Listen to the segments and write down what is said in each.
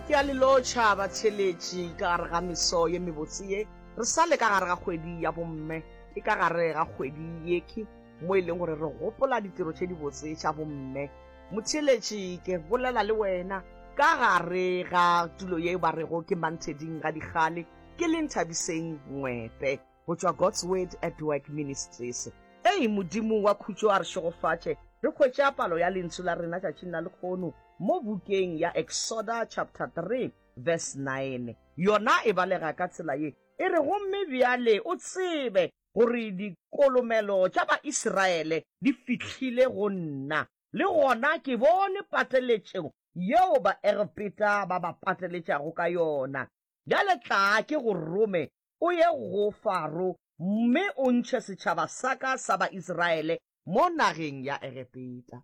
Ke a le lotšha batheeletši ka gare ga meso ye mebotse ye. Re sa le ka gare ga kgwedi ya bomme. Ke ka gare ga kgwedi ye ke mo e leng gore re gopola ditiro tše dibotse tša bomme. Motheeletši, ke bolela le wena ka gare ga tulo ye ba rego ke Mantheding Gadikgale, ke leng Thabiseng Ngwepe. go tšwa God's Word at Work Ministries. Ei, Modimo wa khutšo a re šegofatše re hwetša palo ya lentsu la rena tšatšing la lekgono mo bukeng ya Exoda chapter 3 verse 9. Yona e balega ka tsela ye e re, Gomme bjale o tsebe gore dikolomelo tša Baisraele di fihlile go nna, le gona ke bone pateletšo yeo Baegepeta ba ba pateletšago ka yona. Bjale tlaa ke go rome o ye go Faro mme o ntšhe setšhaba sa ka sa ba-Israele mo nageng ya Egepeta.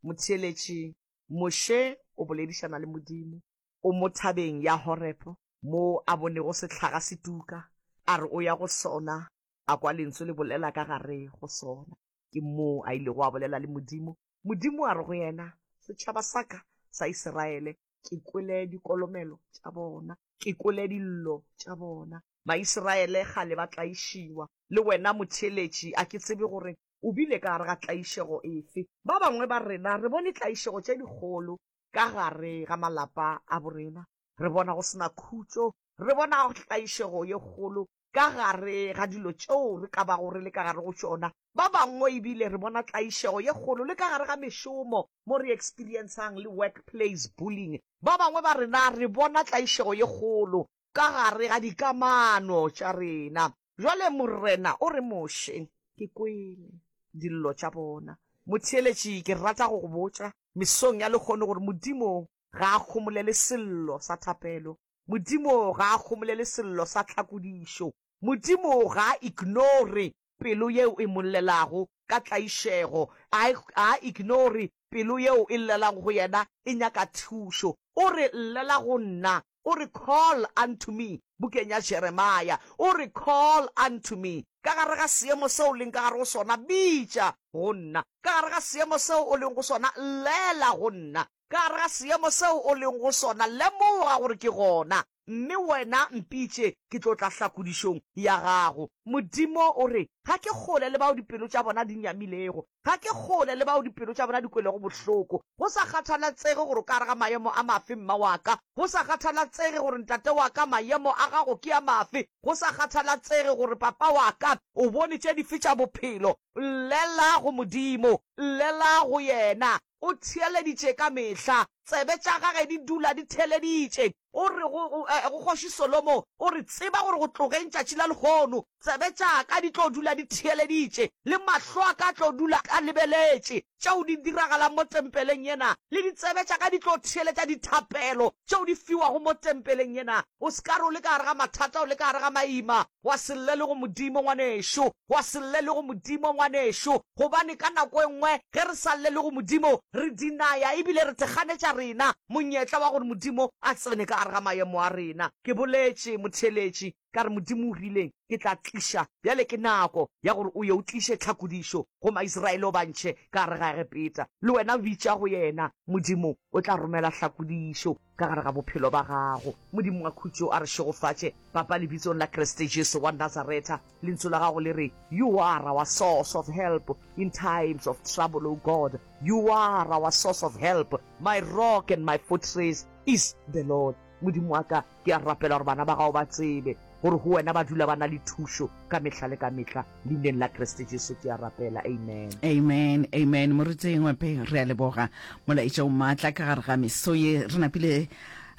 Motheeletši Moše o boledišana le Modimo. O mo thabeng ya Horepo, moo a bonego sehlaga se tuka, a re o ya go sona, a kwa Lentswe le bolela ka gare go sona. Ke moo a ilego a bolela le Modimo, Modimo a re go yena, Setšhaba sa ka sa Israele ke kwele dikolomelo tša bona, ke kwele dillo tša bona. Maisraele kgale ba tlaišiwa. Le wena motheeletši, a ke tsebe gore o bile ka gare ga tlaišego efe. Ba bangwe ba rena re bone tlaišego tše dikgolo ka gare ga malapa a borena. Re bona go se na khutšo. Re bona tlaišego ye kgolo ka gare ga dilo tšeo re ka bago re le ka gare go tšona. Ba bangwe ebile re bona tlaišego ye kgolo le ka gare ga mešomo mo re experiencang le workplace bullying. Ba bangwe ba rena re bona tlaišego ye kgolo ka gare ga dikamano tša rena. Bjale Morena o re, Moshe, ke kwele dillo tša bona. Motheeletši, ke rata go go botša mesong ya lekgono gore Modimo ga a khomolele sello sa thapelo. Modimo ga a kgomolele sello sa tlhakodišo. Modimo ga a ignore pelo yeo e mo llelago ka tlaišego. A, ga a ignore pelo yeo e llelago go yena e nyaka thušo. O re, Llela go nna. O re, Call unto me, bukeng ya Jeremia. O re, Call unto me. Ka gare ga seemo seo o leng ka gare go sona, bitša go nna. Ka gare ga seemo seo o leng go sona, llela go nna. Ka gare ga seemo seo o lego go sona, lemoga gore ke gona. Mme wena mpitše, ke tlo tla hlakodišong ya gago. Modimo o re, Ga ke kgole le bao dipelo tša bona di nyamilego. Ga ke kgole le bao dipelo tša bona di kwelego bohloko. Go sa kgathalatsege gore o ka gare ga maemo a mafe, mma wa ka, go sa kgathalatsege gore ntate wa ka, maemo a gago ke a mafe, go sa kgathalatsege gore papa wa ka, o bone tše dife tša bophelo, llela go Modimo. Llela go Yena. O theeleditše ka mehla, tsebe tša gage di dula di theeleditše. O re go, go, eh, go Kgoši Solomo, O re, Tseba gore go tlogeng tšatši la lehono, tsebe tša ka di tlo dula di theeleditše, le mahlo a ka a tlo dula a lebeletše tšeo di diragalang mo tempeleng yena, le ditsebe tša ka di tlo theeletša dithapelo tšeo di fiwago mo tempeleng yena. O se ka re o le ka gare ga mathata, o le ka gare ga maima, Wa se lle le go Modimo, ngwanešu. Wa se lle le go Modimo, ngwanešu. Gobane ka nako e nngwe ge re sa lle le go Modimo, re dinaya ebile re tekganetša rena monyetla wa gore Modimo a tsene ka gare ga mayemo a rena. Ke boletše motheeletši, ka re, Modimo o rile, Ke tla tliša. Bjale ke nako ya gore o ye o tliše tlhakodišo go Maisraele, o ba ntšhe ka gare ga Egepeta. Le wena bitša go Yena, Modimo o tla romela tlhakodišo. ka gare ga bophelo ba gago. Modimo wa khutšo a re šegofatše, Papa, Lebitsong la Kriste Jesu wa Nazaretha. Lentsu la gago le re, You are our source of help in times of trouble, O God. You are our source of help. My rock and my fortress is the Lord. Modimo wa ka, ke a rapela gore bana ba gago ba tsebe gore go wena ba dula ba na le thušo ka mehla le ka mehla. Leineng la Kriste Jesu ke a rapela. Amen. Amen, amen. Moruti Ngwepe, re a leboga molaetša o maatla ka gare ga meso ye. Re napile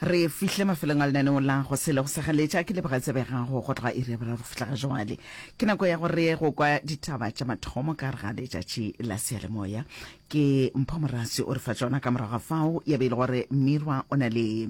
re fihle mafelong a lenaneo la go se le go segaletša. Ke leboga tsebe ya gago go tloga iri ya boraro go fihla ga jwale. Ke nako ya gore go kwa ditaba tša mathomo ka gare ga letšatši la seyalemoya. Ke Mpho Morasi o re fa tšona ka morago ga fao ya be e le gore Mmirwa o na le